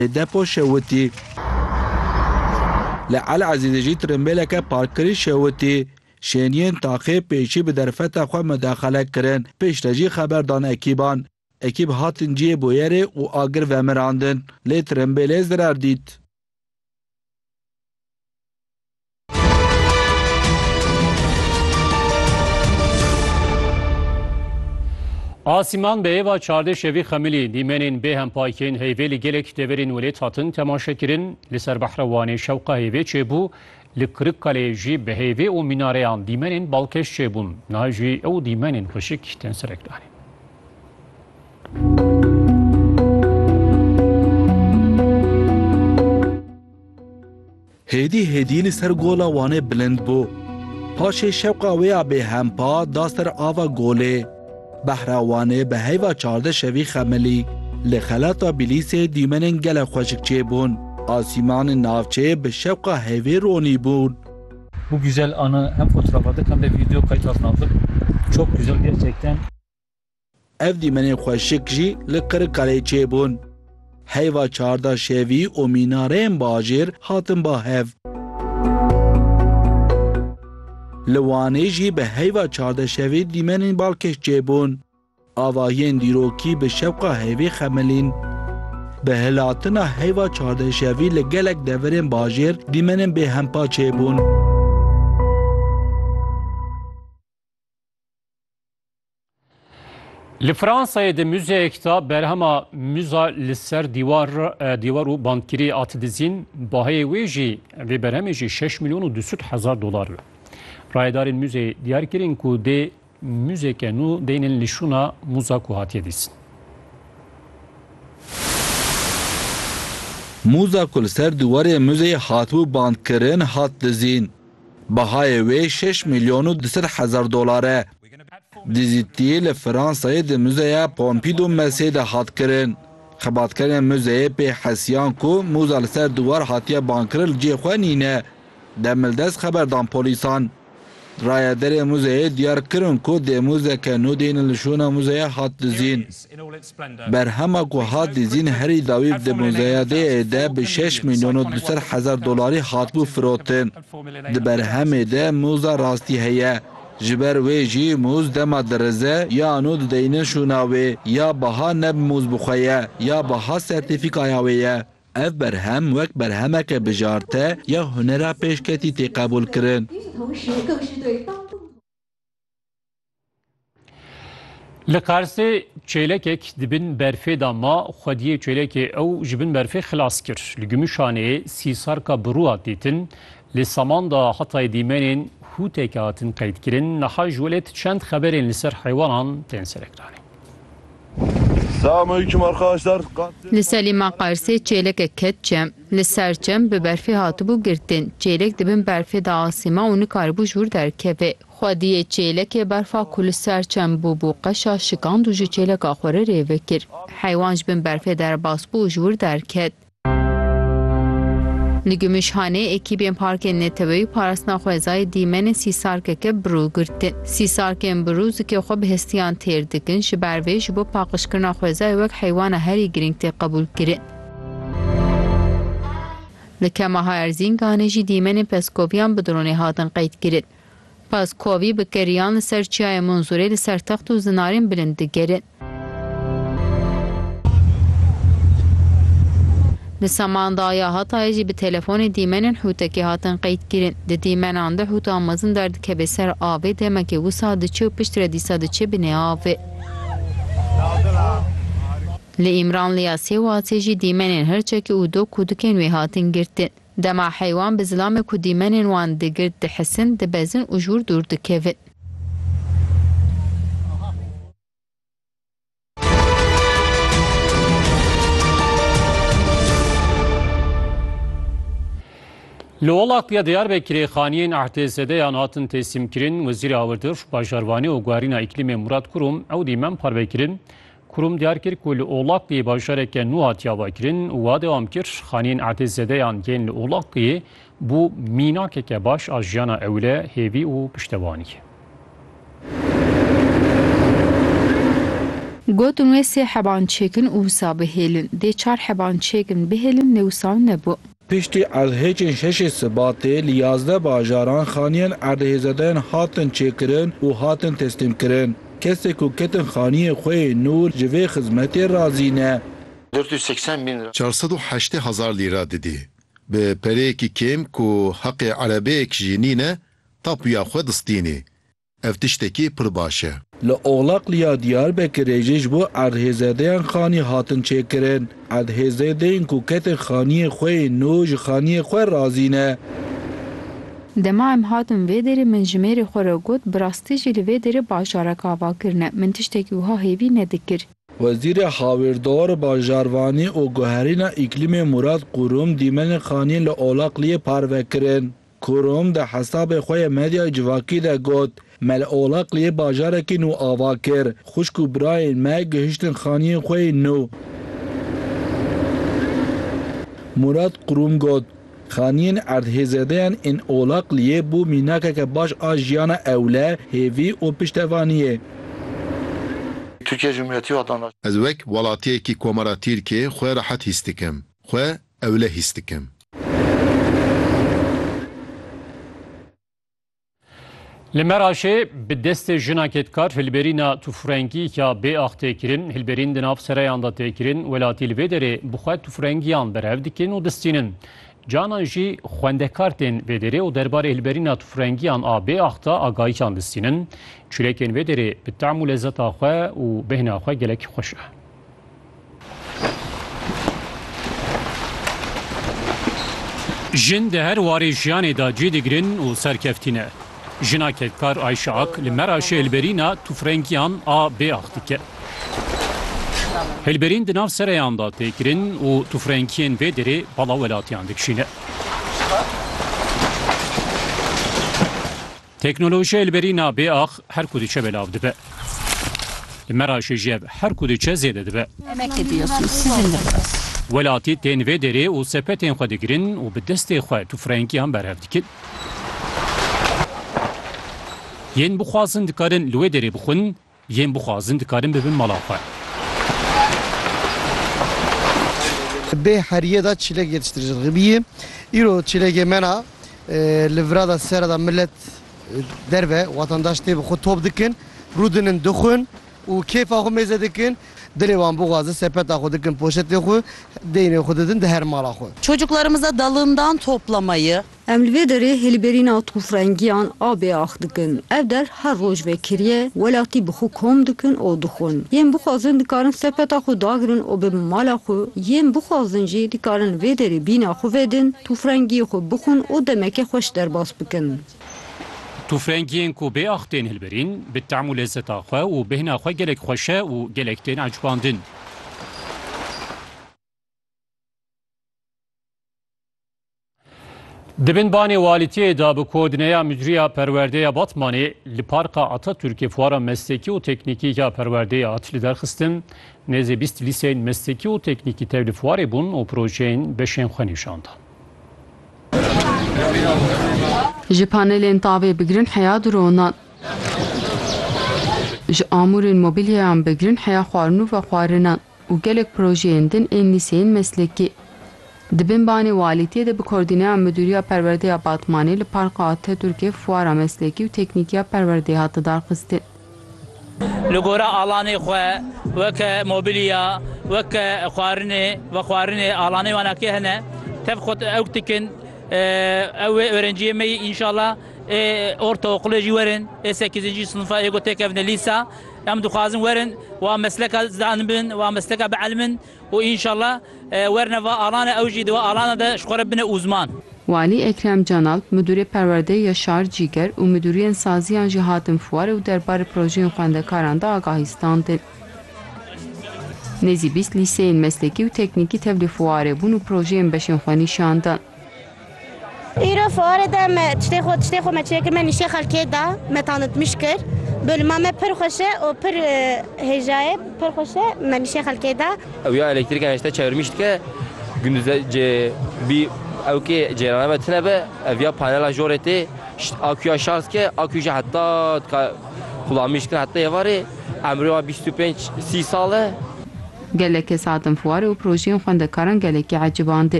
Depo şewitî. Li Elezîzê jî tirimbêleke parkkirî şewitî. Şêniyên taxê pêşî bi derfeta xwe midaxale kirin, piştre jî xeber dan ekîban. Ekîb hatin cihê bûyerê û agir vemirandin, lê tirimbêlê zirar dît. Asîman bi hêva çardê şevî xemilî dîmenên bê hempayîkên heyvê li gelek deverên welêt hatin temaşekirin. Li ser behra Wanê şewqa hêvê çêbû, li Kirikkaleyê jî bi hêvê û mînareyan dîmenên balkêş çêbûn. Niha jî ew dîmenên xweşik tên serekdanîn. Hêdî hêdî li ser gola Wanê bilind bû. Paşê şewqa wê ya bêhempa da ser ava golê. Behra Wanê bi heyva çardeh şevî xemilî. Li xelata Bîlîsê dîmenên gelek xweşik çêbûn. Asîmanên navçê bi şewqa hevê ronî bûn. Bu güzel anı hem fotoğraf aldık hem de video kayıt altına aldık. Çok güzel gerçekten. Ev dîmenên xweşik jî li Qirikkaleyê çêbûn. Heyva çarda şevî û mînareyên bajêr hatin ba hev. Li Wanê jî bi heyva çarda şevî dîmenên balkêş çêbûn. Avahiyên dîrokî bi şewqa heyvê xemilîn. Bi hilhatina heyva çarda şevî li gelek deverên bajêr dîmenên bêhempa çêbûn. Li Fransayê di muzeyek de berhema muza li ser dîwar dîwar û bandkirî hat dizîn, baheyê wê jî vê berhemê jî 6 milyon û 200 hezar dolar be. Rayedarên muzeyê diyar kirîn ku dê muzeke nû deynên li şûna muza ku hatiye dîsin. Muza ku li ser dîwarê muzeyê hatibû bandkirin hat dizîn. Bahayê wê şeş milyon û du sed hezar dolar e. Dizîtiyê li Fransayê di Muzeya Pompidou Messê de hat kirin. Xebatkerên muzeyê pê hesiyan ku mûza li ser diwar hatiye bankirin li cihê xwe nîne. Demildest xeber dan polîsan. Rayedarên muzeyê diyar kirin ku dê muzeke nû dêne li şûna muzeyê hat dizîn. Berhema ku hat dizîn herî dawî di muzeyadeyê de bi şeş mîlyon û du sed hezar dolarî hatibû firotin. Di berhemê de mûza rastî heye. Ji ber wê jî mûz dema dirize yan û dideynin şûna wê ya biha ne bi mûz bi xwe ye ya biha sertîfîkaya wê ye. Ev berhem wek berhemeke bijarte ya hunera pêşketî tê qebûlkirin. Li Qarsê çêlekek di bin berfê da ma xwediyê çêlekê ew ji bin berfê xilas kir. Li Gimuşanê sîsarka bi rû hat dîtin. Li Saman da Hatay dîmenên hûteke hatin qeydkirin. Niha ji welêt çend xeberên li ser heywanan tên serekranîn. Li Selîma Qarsê çêlekek ket çem. Li ser çem bi berfê hatibû girtin. Çêlek di bin berfê de asîma û nikaribû ji wir derkeve. Xwediyê çêlekê berfa ku li ser çem bûbû qeşa şikand û ji çêleka xwe re rêve kir. Heywan ji bin berfê derbas bû û ji wir derket. Li Gümüşhane ekîbên Parkên Neteweyî parastina xwezayê dîmenên sîsarkeke birû girtin. Sîsarkên birû zikê xwe bi hestiyan têr dikin, ji ber vê ji bo paqijkirina xwezayê wek heywana herî girîng tê qebûlkirin. Li Kemaha Erzînganê jî dîmenên pezkoviyan bi dronê hatin qeydkirin. Pas ku wî bi keriyan li ser çiyayê Munzurê li ser text û zinarên bilind digerin. Di Samandağya Hatayê jî bi telefonê dîmenên Hûtekê hatin qeydkirin. Di dîmenan de Hûta mezin derdikeve ser avê, demekê wisa diçe û piştre dîsa diçe binê avê. Li Îmranliya Sêwasê jî dîmenên Hirçekê û Dok û Dikên wê hatin girtin. Dema heywan bi zilamê ku dîmenên wan digirt dihisin, dibezin û ji wir dûr dikevin. Li welatya Diyarbekirê xaniyên ehtêzedeyan hatin têsîmkirin. Wezîrê Awirdiş, Bajarvanî û Guherîna Îklîmê Murat Kurum ew dîmen parvekirin. Kurum diyar kir ku li Olaqiyê bajareke nû hatiya vekirin û wiha dewam kir, Xaneyên erdêzedeyan yên li Olaqiyê bû mînakeke baş a jiyana ewile, hêvî û piştevaniyê. Gotin wê sê heban çêkin û wisa bihêlin. Dê çar heban çêkin bihêlin lê wisa nebû. Piştî erdhêjên şeşê Sibatê li yazdeh bajaran xaniyên erdhêzedayên hatin çêkirin û hatin teslîmkirin. Kesê ku ketin xaniyê xwe yê nû ji vê xizmetê razî ne. Dört yüz seksen bin lira. Çar sed û heştê hezar lîra didî. Bi pereyekî kêm ku heqê erebeyek jî nîne tapuya xwe distînî. Ev tiştekî pir baş e. Li Oxlaqlî ya Diyarbekirê jî ji bo erdhêzêdeyan xanî hatin çêkirin. Erdhêzêdeyên ku ketin xaniyên xwe yên nû ji xaniyên xwe razî ne. Dema em hatin vê derê min ji mêrê xwe re got, bi rastî jî li vê derê bajarek ava kirine. Min tiştekî wiha hêvî nedikir. Wezîrê Hawirdar, Bajarvanî û Guherîna Îklîmê Mûrat Qûrum dîmenên xaniyên li Oxlaqliyê parve kirin. Kurum di hesabê xwe yê medyayê civakî de got, Mele Olakliyê bajarekî nû ava kir, xwişk û birayên me gihiştin xaniyên xwe yên nû. Mûrat Kurum got, Xaniyên erdhêzêdeyan ên Olakliyê bû mînakeke baş a jiyana ewle, hêvî û piştevaniyê. Tirkiye Cumhuriyeti hat anlaştin. Ez wek welatiyekî Komara Tirkiyê xwe rehet hîs dikim. Xwe Ewle hîs dikim. Li Meraşê bi destê jina kedkar hilberîna tufrengî ya bêax tê kirin. Hilberîn di nav sereyan de tê kirin. Welatî li vê derê bi xwe tufrengiyan berev dikin û distînin. Canan jî xwendekar tên vê derê û derbarê hilberîna tufrengiyan a bêax de agahiyan distînin. Çîrekên vê derê bi tam û lezeta xwe û bêhna xwe gelek xweş e. Jin di her warê jiyanê de cih digirin û serkeftî ne. Jina kedkar Ayşe Ak li Meraşê hilberîna tûfrengiyan a bêax dike. Hilberîn di nav sereyan de tê kirin û tûfrengiyên vê derê bala welatiyan dikişîne. Teknolojiyayê li berî na bê ax her ku diçe belav dibe. Li me ra jî jev her ku diçe zêde dibe. Welatî tên vê derê û sepetên xwe digirin û bi destê xwe tufrengiyan berhev dikin. Yên bixwazin dikarin li wê derê bixwin. Yên bixwazin dikarin bibin mala xwe. Bê heriyê de çîlek yetiştirijin ribiyê. Îro çîlekê mena li vira de sere de milet derve watandaş tê bi xwe top dikin, rûdinin dixwin û kêfa xwe mêze dikin. Dilê wan bixwaze sepeta xwe dikin poşetê xwe, deynê xwe didin di her mala xwe. Çocuklarımıza dalından toplamayı, Em li vê derê hilberîna tûfrengiyan a bêax dikin. Ev der her roj vekiriye, welatî bi xwe kom dikin û dixwin. Yên bixwazin dikarin sepeta xwe dagirin û bibin mala xwe, yên bixwazin jî dikarin li vê derê bîna xwe vedin, tûfrengiyê xwe bixwin û demeke xweş derbas bikin. Tûfrengiyên ku bêax tên hilberîn, bi tam û lezzeta xwe û bêhna xwe gelek xweş e û gelek tên ecbandin. Di bin banê walîtiyê de bi koordineya Müdriya Perwerdeya Batmanê li Parka Atatürkê fuara meslekî û teknîkî ya perwerdeyê hat li derxistin. Nêzê bîst lîseyên meslekî û teknîkî tev li fuarê bûn û projeyên beşên xwe nîşan dan. Ji panelên tavê bigirin heya dronan. Ji amûrên mobîlyeyan bigirin heya xwarin û vexwarinan. û gelek projeyên din ên lîseyên meslekî. Di bin banê walîtiyê de bi kordîneya Midûriya Perwerdê ya Batmanê li Parka Atatürkê fuara meslekî û teknîkî ya perwerdeyê hate darxistin. Li gora alanê xwe weke mobilya, weke xwarinê, vexwarinê alanê wan akê hene. Tev xwe ewk dikin. Ew wê örenciyê me yî înşallah ê ortaokulê jî werin, ê sekîzincî sinifa ê ku têkevne lîsa. Em dixwazin werin wa mesleka zanibin, wa mesleka bielmin û înşallah werine va alane ew jî di va alana de ji xwe re bine ûzman. Walî Ekrem Canalp, Midûrê Perwerdeyê ya Şar Cîger û midûriyên saziyan jî hatin fuarê û derbarê projeyên xwendekaran de agahî standin. Nêzî bîst lîseyên meslekî û teknîkî tevlî fuarê bûn û projeyên beşên xwe nîşan dan. Îro fuarê de me tiştê xwe tiştê xwe me çê kir me nîştê xelkê da me tanitmiş kir. Bölüma me pir xweş e û pir hêja ye pir xweş e me nîştê xelkê da. Ewya elektrîka nişte çevirmîş dike gunduz e cê bî ewkê cêrana me tune be evya panela jorê tê akuya şarj dike akuy jî heta dika xulamîş dikin heta êvarê emrê wa bîst û pênc sî sal e. Gelek kes hatin fuarê û projeyên xwendekaran gelekî eciband.